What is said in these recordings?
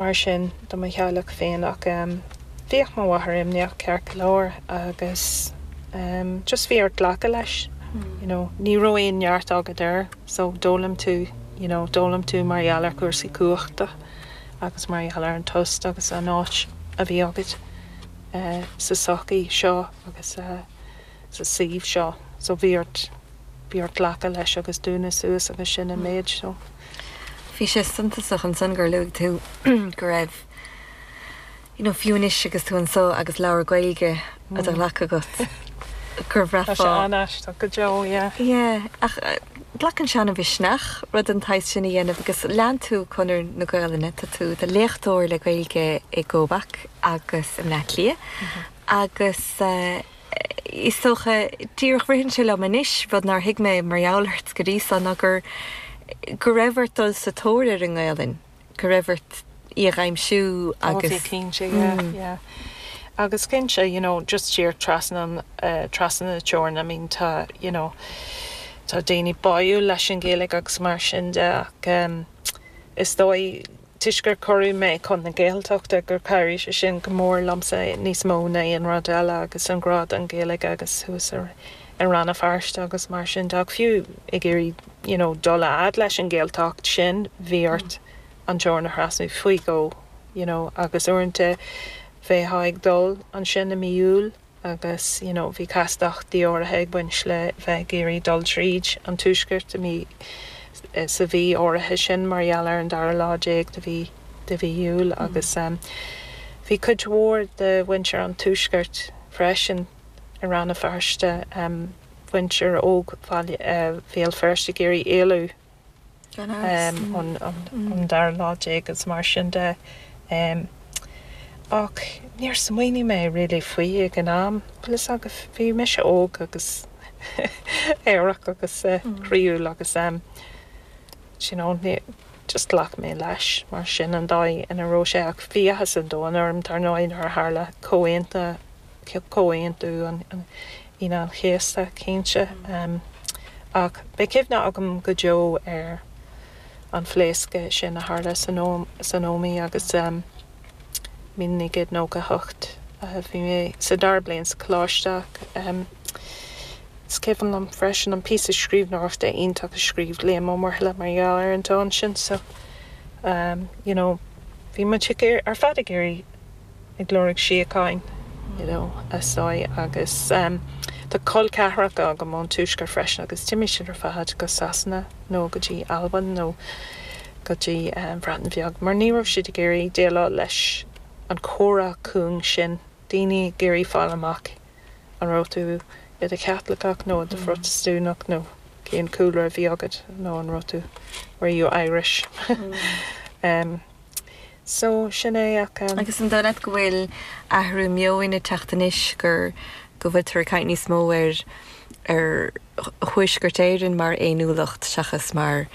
Mar sin de mo theaghlach féin ach bhíodh mo mháthair imníoch ceart go leor agus just bhí orainn glacadh leis you know, ní raibh aon neart agat air so d'fhoghlaim tú you know, d'fhoghlaim tú mar gheall ar chúrsaí cumhachta agus mar gheall ar an tost agus an áit a bhí agat sa tsochaí seo agus. sa suíomh seo. So bhí ort, bhí ort glacadh leis agus dúnadh suas agus sin an méid. So. Bhí sé suntasach ansan gur luaigh tú go raibh, you know, fiú anois agus tú anso agus leabhar Gaeilge i do ghlac agat, gur bhraithfeá. Tá sé an-aisteach go deo, yeah. Yeah, ach glacann sé ana-mhisneach rud den tsaghas sin a dhéanamh agus lean tú conair na Gaolainne, tá tú id léachtóir le Gaeilge i gCorcaigh agus i mBaile Átha Cliath agus, eh, Is dócha, díreach ritheann sé liom anois, rud nár thuig mé mar gheall ort go dtí san, ná gur, go raibh ort dul sa tóir ar an nGaelainn, go raibh ort í a dh'aimsiú agus. Ó, cinnte, yeah, yeah. Agus cinnte, you know, just siar trasna, trasna na teorann, I mean, tá, you know, tá daoine báúil leis an Ghaeilge agus mar sin de ach is dóigh, toisc gur cuireadh mé chun na Gaeltachta, gur chabhraigh sé sin go mór liomsa níos mó ná aon rud eile agus an grá don Ghaeilge agus thuas i Rann na Feirste agus mar sin de ach fiú ag iarraidh you know dul a fhad leis an Ghaeltacht sin bhí ort an teorainn a thrasnú faoi dhó you know agus uaireanta bheifeá ag dul ansin i mí Iúil agus, you know, bhí castachtaí áirithe ag baint le bheith ag iarraidh dul tríd an tuaisceart i mí, sa mhí áirithe sin mar gheall ar an dara lá déag de mhí, de mhí Iúil agus bhí cuid mhór de mhuintir an tuaiscirt freisin i Rann na Feirste, muintir óg Bhéal, Bhéal Feirste ag iarraidh éalú. an dara lá déag agus mar sin de. Ach níor smaoinigh mé really faoi ag an am. Bhuel, agus bhí mise óg agus aerach agus croíúil agus em. d'you know, ní, just ghlac mé leis mar sin an dóigh ina raibh sé ach bhí áthas an domhain orm dar ndóigh nuair a tharla comhaontú, Comhaontú an, Aoine an Chéasta, cinnte. Ach beidh cuimhne agam go deo ar an phléasc sin a tharla san Ómaigh agus 1998. Bhí mé sa dara bliain sa choláiste ach is cuimhin liom freisin an píosa scríbhneoireachta iontach a scríobh Liam Ó Muirthile mar gheall ar an tán sin. So, you know, bhí muid ar fad ag iarraidh ag lorg síocháin, you know, sí agus tá col ceathracha agam ón Tuaisceart freisin agus d'imigh siad ar fad go Sasana nó go dtí Albain nó go dtí an Bhreatain Bheag mar ní raibh siad ag iarraidh déileáil leis an chomhrá cúng sin, daoine ag iarraidh fáil amach an raibh tú i do Chaitliceach nó i do Phrotastúnach nó cén cúlra a bhí agat nó an raibh tú, were you Irish? So, sin é ach. Agus an dóigh leat go bhfuil athrú meoin ag teacht anois, gur, go bhfuiltear ag caint níos mó ar, ar Thuaisceart Éireann mar fhéiniúlacht seachas mar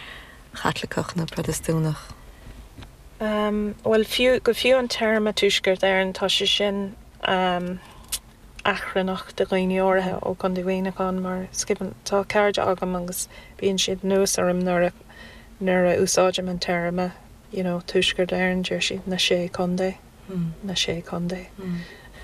Chaitliceach nó Protastúnach? Bhuel, fiú, go fiú an téarma Tuaisceart Éireann, tá sé sin achrannach do dhaoine áirithe ó Chondae Mhuineacháin mar is cuimhin tá cairde agam agus bíonn siad anuas orm nuair a, nuair a úsáidim an téarma. you know Tuaisceart Éireann deir siad na Sé Chontae na Sé Chontae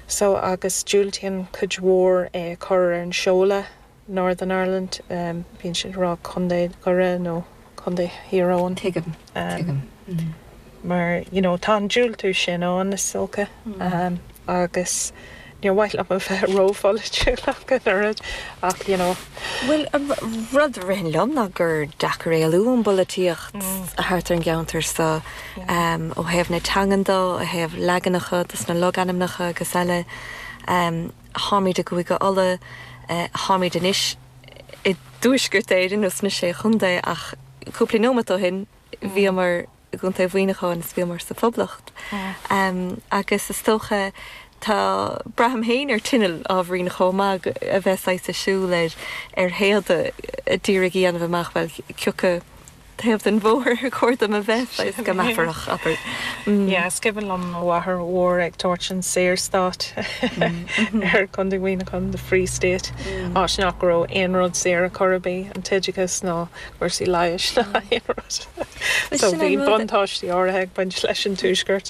so agus diúltaíonn cuid mhór é a chur ar an seoladh Northern Ireland bíonn siad ag rá Contae Dhoire nó Contae Thír Eoghain tuigim tuigim mar you know tá an diúltú sin ann is dócha agus. Níor mhaith liom a bheith rópholaitiúil ach an oiread ach, you know. Bhuel, an rud a ritheann liom ná gur deacair éalú ón bpolaitíocht thart ar an gceantar so, ó thaobh na teangan de, ó thaobh leaganacha dos na logainmneacha agus eile. Táimid i gCúige Uladh, táimid anois i dTuaisceart Éireann nó sna Sé Chontae ach cúpla neomat ó shin bhíomar i gContae Mhuineacháin is bhíomar sa Phoblacht agus is dócha tá, braithim féin ar tinneall ábhairín chomh maith a bheith saghas ag siúl ar théada d'iarraidh a dhéanamh amach, bhuel, cioca taobh den bhóthar ar chóir dom a bheith, saghas go meafarach, abair. Yeah, is cuimhin liom mo mháthair mhór ag tabhairt an Saorstát ar Contae Mhuineacháin, the Free State, áit nach raibh aon rud saor ar chor ar bith, an t-oideachas ná cúrsaí leighis ná aon rud. So bhí buntáistí áirithe ag baint leis an Tuaisceart.